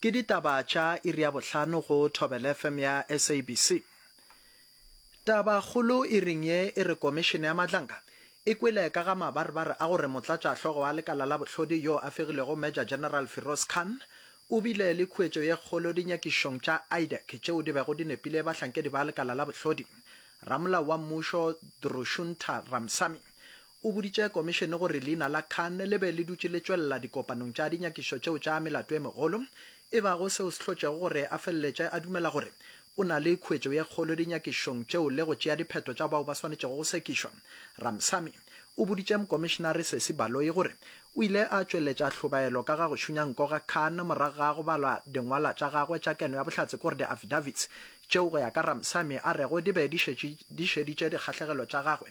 Ke ditaba tša iri ya bohlano go Thobelfm ya SABC. Taba kgolo iring ye e re Komišene ya Madlanka e kwele ka ga mabarebare a gore motlatšahlogo wa lekala la bohlodi yo a fegilego Major General Firoz Khan o bile le khuetšo ye kgolo dinyakišong tša IDEC tšeo di bego di nepile bahlankedi ba lekala la bohlodi. Ramolao wa mmušo Drushuntha Ramsamy O boditše komišene gore leina la Khan le be le dutše le tšwelela dikopanong tša dinyakišo tšeo tša melato e megolo, e bago seo se hlotšego gore a feleletše a dumela gore o na le khuetšo ye kgolo dinyakišong tšeo le go tšea diphetho tša bao ba swanetšego go sekišwa. Ramsamy o boditše Mokomišenare Sesi Baloyi gore o ile a tšweletša hlobaelo ka ga go šunya nko ga Khan morago ga go balwa dingwalwa tša gagwe tša keno ya bohlatse gore di-affidavits tšeo go ya ka Ramsamy a rego di be di šetše di šeditše dikgahlegelo tša gagwe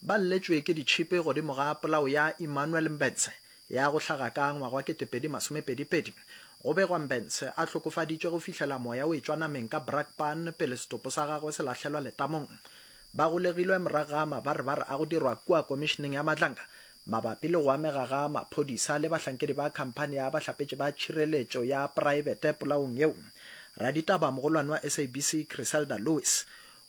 Ba lletšwe ke ditšhipi godimo ga polao ya Emmanuel Mbentshe ya go hlaga ka ngwaga wa 2022. Go begwa Mbentshe a hlokofaditšwe go fihlela moya o etšwa nameng ka Brakpan pele setopo sa gagwe se lahlelwa letamong. Ba golegilwe morago ga mabarebare a go dirwa kua Komišeneng ya Matlanga mabapi le go amega ga maphodisa le bahlankedi ba khamphani ya bahlapetši ba tšhireletšo ya praebete polaong yeo. Raditaba mogolwane wa SABC Criselda Lewis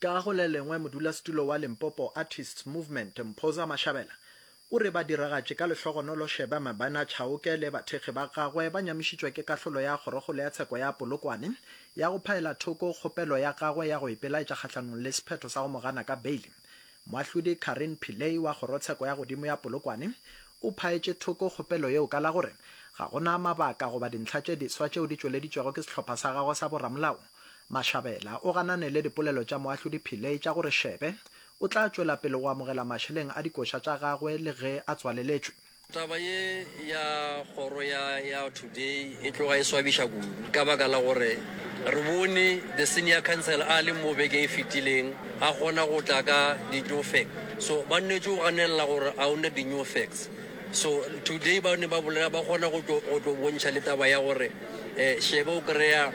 Ka go le lengwe, modulasetulo wa Limpopo Artists Movement, Mphoza Mashabela, o re badiragatši ka lehlogonolo Sheba Mabena Chauke le bathekgi ba gagwe ba nyamišitšwe ke kahlolo ya Kgorokgolo ya Tsheko ya Polokwane ya go phaela thoko kgopelo ya gagwe ya go ipelaetša kgahlanong le sephetho sa go mo gana ka beile. Moahlodi Carine Pillay wa Kgorotsheko ya Godimo ya Polokwane o phaetše thoko kgopelo yeo ka la gore ga go na mabaka goba dintlha tše diswa tšeo di tšweleditšwego ke sehlopha sa gagwe sa boramolao. Mashabela o ganane le dipolelo tša Moahlodi Pillay tša gore Shebe o tla tšwela pele go amogela mašeleng a dikoša tša gagwe le ge a tswaleletšwe. Taba ye ya kgoro ya ya Today e tloga e swabiša kudu ka baka la gore re bone the senior counsel a le mo beke e fetileng a kgona go tla ka di new facts. So ba nnetše go ganelela gore a o na di new facts. So today ba ne ba bolela ba kgona go tlo go tlo bontšha le taba ya gore eh shebe o kreya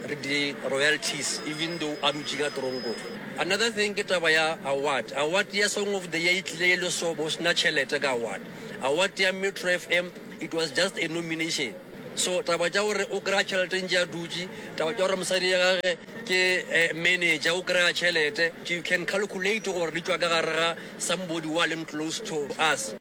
re di royalties even though a dutše ka tronko. Another thing ke taba ya award. Award ya song of the year e tlile e le so bo sena tšhelete ka award. Award ya Metro FM it was just a nomination. So taba tša gore o kreya tšhelete ntše a dutše, taba tša gore mosadi ya gage ke eh manager o kreya tšhelete you can calculate gore di tšwa ka gare ga Somebody wa leng close to us.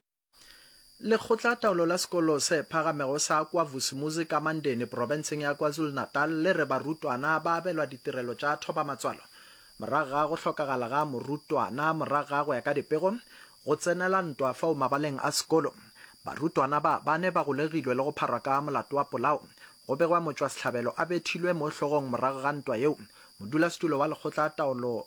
Lekgotlataolo la sekolo se phagamego sa KwaVusumuzi ka Mandeni profenseng ya KwaZulu-Natal le re barutwana ba abelwa ditirelo tša thobamatswalo morago ga go hlokagala ga morutwana morago ga go ya ka dipego go tsenela ntwa fao mabaleng a sekolo. Barutwana ba bane ba golegilwe le go pharwa ka molato wa polao. Go begwa motšwasehlabelo a bethilwe mo hlogong morago ga ntwa yeo, modulasetulo wa lekgotlataolo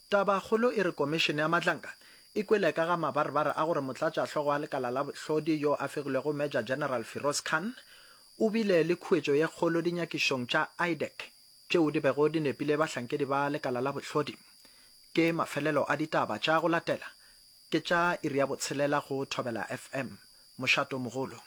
Tabakgolo e re Komišene ya Matlanka e kwele ka ga mabarebare a gore motlatšahlogo wa lekala la bohlodi yo a fegilwego Major General Firoz Khan o bile le khuetšo ye kgolo dinyakišong tša IDEC tšeo di bego di nepile bahlankedi ba lekala la bohlodi. Ke mafelelo a ditaba tša go latela ke tša iri ya botshelela go Thobela FM. Mošato mogolo.